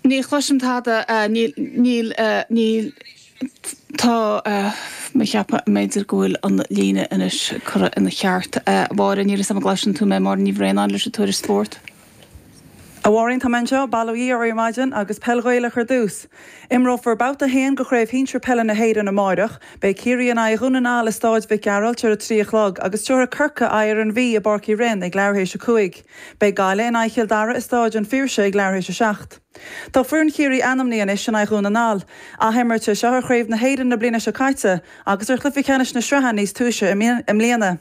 Ní chloisim tada. Níl. Níl. Tá. Cheapfainn, b'fhéidir go bhfuil an líne anois curtha ina cheart. A Mháire, níl 'fhios a'm an gcloiseann tú mé, Máire Ní Bhraonáin leis an Tuairisc Spórt. A Mháirín, tá mé anseo. Bail ó Dhia oraibh ar maidin agus peil Ghaelach ar dtús. Imreofar babhta a haon de Chraobh Shinsir Peile na hÉireann amáireach. Beidh Ciarraí in aghaidh Dhún na nGall i Stáid Mhic Gearailt ar a trí a chlog agus tabharfaidh Corcaigh aghaidh ar an Mhí i bPáirc Uí Rinn ag leathuair théis a cúig. Beidh Gaillimh in aghaidh Chill Dara i Stáid an Phiarsaigh ag leath th'éis a seacht. Tá foireann Chiarraí ainmnithe anois in aghaidh Dhún na nGall. Ath-imirt é seo ar Chraobh na hÉireann na bliana seo caite agus ar chluiche ceannais na sraithe níos túisce i mbliana.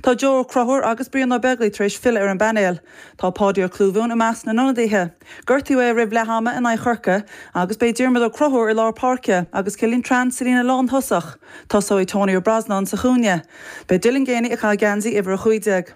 Tá Joe Ó Conchúir agus Brian Ó Beaglaoi tar éis filleadh ar an bpainéal. Tá Páidí Ó Clúmháin i measc na n-ionadaithe. Gortaíodh é roimh leath ama in aghaidh Chorcaí agus beidh Diarmuid Ó Conchúir i lár páirce agus Cillian Trant sa líne lán-thosach. Tosóidh Tony Ó Brosnáin sa chúinne. Beidh Dylan Geaney ag caitheamh geansaí uimhir a chúig déag.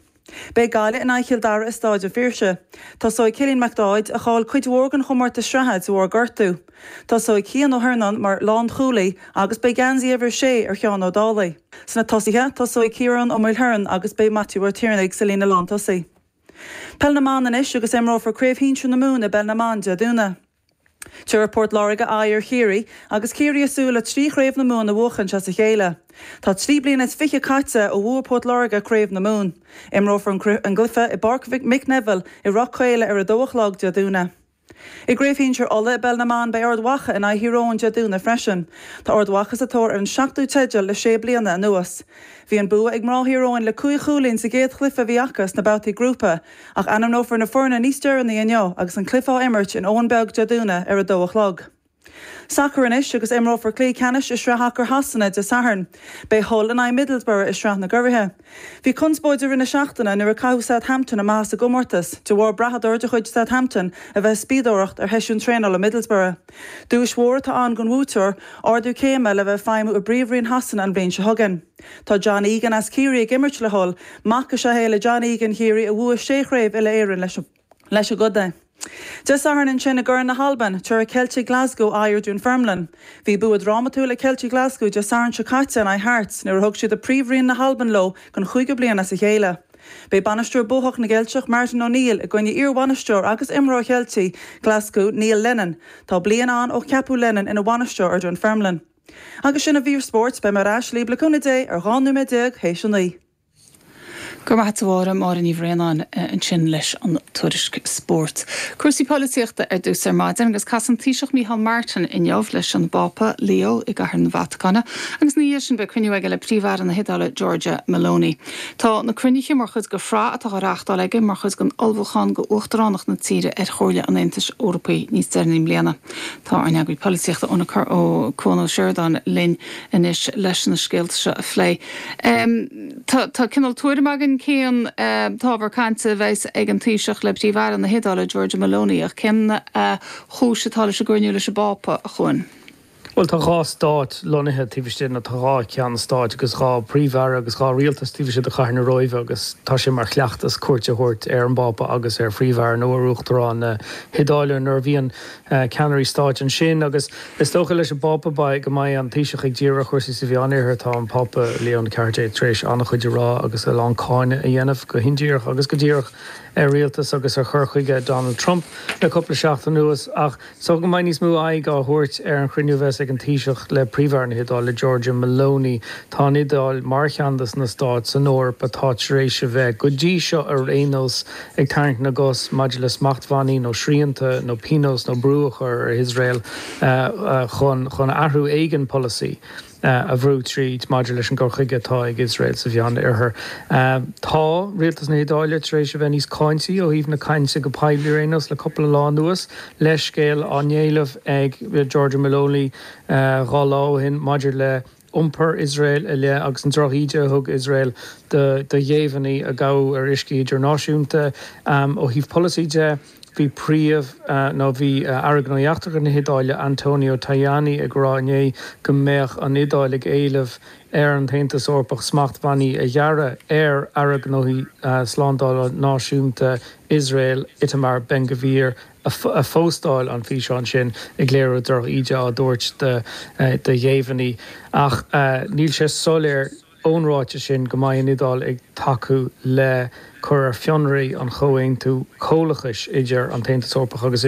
Beidh Gaillimh in aghaidh Chill Dara i Stáid an Phiarsaigh. Tosóidh Cillian Mac Dáibhéid, a chaill cuid mhór den chomórtas sraithe de bharr gortú. Tosóidh Cian Ó hIarnáin mar lánchúlaí agus beidh geansaí uimhir 6 ar Sheán Ó Dálaigh. Sna tosaithe, tosóidh Ciarán Ó Maoilchiaráin agus beidh Maitiú Ó Tiarnaigh sa líne lántosaí. Peil na mBan anois agus imreofar Craobh Shinsir na Mumhan i bPeil na mBan Dé Domhnaigh. Tabharfaidh Port Láirge aghaidh ar Chiarraí agus Ciarraí ag súil le trí Chraobh na Mumhan a bhuachaint as a chéile. Tá trí bliana is fiche caite ó bhuaigh Port Láirge Craobh na Mumhan. Imreofar an cluiche i bPáirc Mhic Neimhil i Ráth Caola ar a dó a chlog Dé Domhnaigh. I gCraobh Shinsir Uladh i bpeil na mban beidh Ard Mhacha in aghaidh Thír Eoghain Dé Domhnaigh freisin. Tá Ard Mhacha sa tóir ar an seachtú teideal le sé bliana anuas. Bhí an bua ag mná Thír Eoghain le cúig chúilín sa gcéad chluiche a bhí acu sna babhtaí grúpa Ach ainmneofar na foirne níos deireanaí inniu agus an cluiche á imirt in Abhainn Bheag Dé Domhnaigh ar a dó a chlog. Sacar anois agus imreofar cluiche ceannais i Sraith Sacair Shasana Dé Sathairn. Beidh Hull in aghaidh Middlesbrough i Sraith na gCuraí. Bhí conspóid i rith na seachtaine nuair a caitheadh Southampton amach as an gcomórtas de bharr brathadóir de chuid Southampton a bheith ag spiadóireacht ar sheisiún traenála Middlesbrough. Duais mhór atá ann don bhuaiteoir, ardú céime le bheith ag feidhmiú i bPríomhroinn Shasana an bhliain seo chugainn. Tá John Egan as Ciarraí ag imirt le Hull. Mac is ea é le John Egan Chiarraí a bhuaigh sé chraobh uile-Éireann leis an gcontae. Dé Sathairn ansin i gCorn na hAlban, tabharfaidh Ceiltigh Ghlaschú aghaidh ar Dunfermline. Bhí bua drámatúil ag Ceiltigh Ghlaschú Dé Sathairn seo caite in aghaidh Hearts nuair a thug siad príomhroinn na hAlban leo don chúigiú bliain as a chéile. Beidh bainisteoir buachach na gCeilteach Martin O'Neill i gcoinne iarbhainisteoir agus imreoir Cheiltigh Ghlaschú Neil Lennon. Tá bliain ann ó ceapadh Lennon ina bhainisteoir ar Dunfermline. Agus sin an mhír spóirt, beidh mé ar ais libh, le cúnamh Dé ar 12 nóiméad th'éis a naoi. Go raibh maith a't, a Mháire, Máire Ní Bhraonáin ansin leis an tuairisc spóirt. Cúrsaí polaitíochta ar dtús ar maidin agus casann an Taoiseach Micheál Martin inniu leis an bPápa Leo i gCathair na Vatacáine agus ina dhiaidh sin beidh cruinniú aige le Príomh-Aire na hIodáile Giorgia Meloni. Tá na cruinnithe mar chuid de shraith atá á reáchtáil aige mar chuid den ullmhúchán d'uachtaránacht na tíre ar Chomhairle an Aontais Eorpaigh níos deireanaí i mbliana. Tá ár n-eagraí polaitíochta ionadach Cuan Ó Seireadáin linn anois leis na scéalta seo a phlé. Tá cineál tuairim againn cén t-ábhar cainte a bheas ag an Taoiseach le Príomh-Aire na hIodáile, Giorgia Meloni, ach cén chúis atá leis an gcruinniú leis an bPápa, a Chuan? Bhuel, tá dhá stát lonnaithe taobh istigh de, nó tá dhá cheann stáit agus dhá Phríomh-Aire agus dhá rialtas taobh istigh de chathair na Róimhe agus tá sé mar chleachtas cuairt a thabhairt ar an bPápa agus ar Phríomh-Aire nó ar Uachtarán na hIodáile nuair a bhíonn ceannairí stáit ansin, agus is dócha leis an bPápa, beidh, go mbeidh an Taoiseach ag díriú ar chúrsaí sa Mheánoirthear. Tá an Pápa Leo a Ceathair Déag tar éis an-chuid a rá agus a lán cáineadh a dhéanamh, go hindíreach agus go díreach, ar rialtas agus ar chur chuige Donald Trump le cúpla seachtain anuas, ach is dócha go mbeidh níos mó airde dhá thabhairt ar an chruinniú a bheas ag an Taoiseach le Príomh-Aire na hIodáile, Giorgia Meloni. Tá an Iodáil, mar cheann de na stáit san Eoraip atá tar éis a bheith, go dtí seo ar aon nós, ag tarraingt na gcos maidir le smachtbhannaí nó srianta nó pionós nó brú a chur ar Iosrael chun athrú éigin polasaí a bhrú tríd maidir leis an gcur chuige atá ag Iosrael sa Mheán Oirthear. Tá rialtas na hIodáile tar éis a bheith níos cáintí ó thaobh na cainte go poiblí ar aon nós le cúpla lá anuas, leithscéal á éileamh ag Giorgia Meloni dhá lá ó shin maidir le iompar Iosrael i leith agus an drochíde a thug Iosrael do ghéibheannaí a gabhadh ar uiscí idirnáisiúnta. Ó thaobh polasaí de, bhí príomh, nó bhí Aire Gnóthaí Eachtracha na hIodáile, Antonio Tajani, ag rá inné go mbeadh an Iodáil ag éileamh ar an tAontas Eorpach smachtbhannaí a ghearradh ar Aire Gnóthaí Slándála Náisiúnta Iosrael, Itamar Ben-Gvir. a phóstáil an físeán sin ag léiriú drochíde á dtabhairt do ghéibheannaí ach níl sé soiléir ón ráiteas sin go mbeidh an Iodáil ag tacú le cur ar fionraí an chomhaontú comhlachais idir an tAontas Eorpach agus